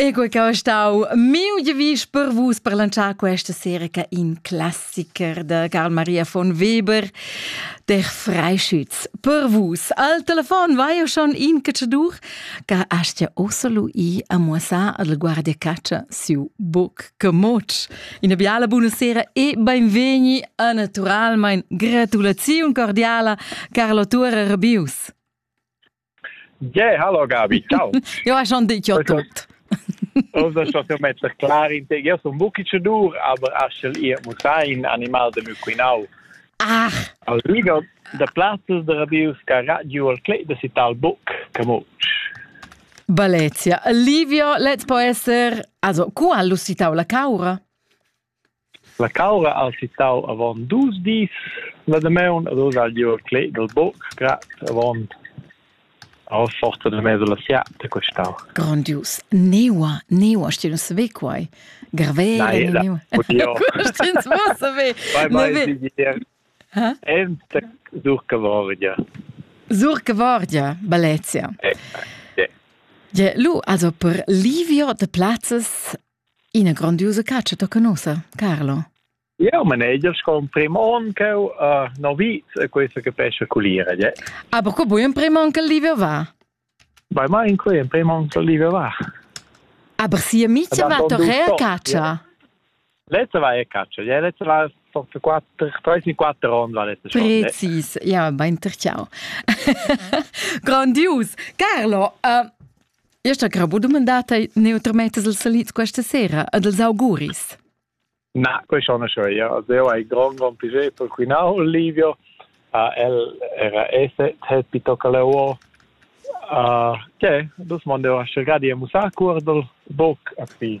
Ego che ho stau miu devis per vus per lanciar questa serie che in classiker de Karl Maria von Weber der Freischütz per vus. Al telefon vai io schon in cacciadur che astia oselu i a muossar al guardia caccia siu boc che moc. Una biala buonasera e benvegni a naturalmein gratulaziun cordiala Carlo Turer Bius. Yeah, hallo Gabi, ciao. Io ho schon dit io tot. Osa schon so metter clar in te, io son bucci cedur, aber aschel ihr muss ein animal de muquinau. Ach. Al liga de plazzas de radios ca radio al clet de sital buc camucc. Balezia. Livio, let's po esser, also, cu ha lussitau la caura? La caura ha sittau avon dus dis la damaun ed oz ha el giu clet dil buc grad avon aua forza de mesa la siata questau. Grandius. Neua, neua, știi, nu se ve quai. Grave, Na, e, neua. Știi, nu va să ve. Vai, vai, Ente Zurca Vardia. Zurca Vardia, Balezia. Eh, eh, eh. Ja, lu, also per Livio de plazzes Ina grondiusa caccia tocca nossa, Carlo. Eu maneger con prim on che uh, no vit questo che pesce culire, je. Aber co bui in prim on che livio va? Bei ma in quei in prim on che livio va. Aber si amici va torre a caccia. Letzte war ja Katscher. Ja, letzte war doch quattro, treisen quattro Runden war letzte Stunde. Präzis, ja, beim Trichau. Grandios. Carlo, uh, Io sta grabo dumandà te neutrametas els salits questa sera ad els auguris. Na, quei schon schon ja. Also io hai grond grond piacere per quinau Olivio. Uh, el era esse te pitocca le uo. Uh, che, dus mondo a cercati e musacur dal boc a qui.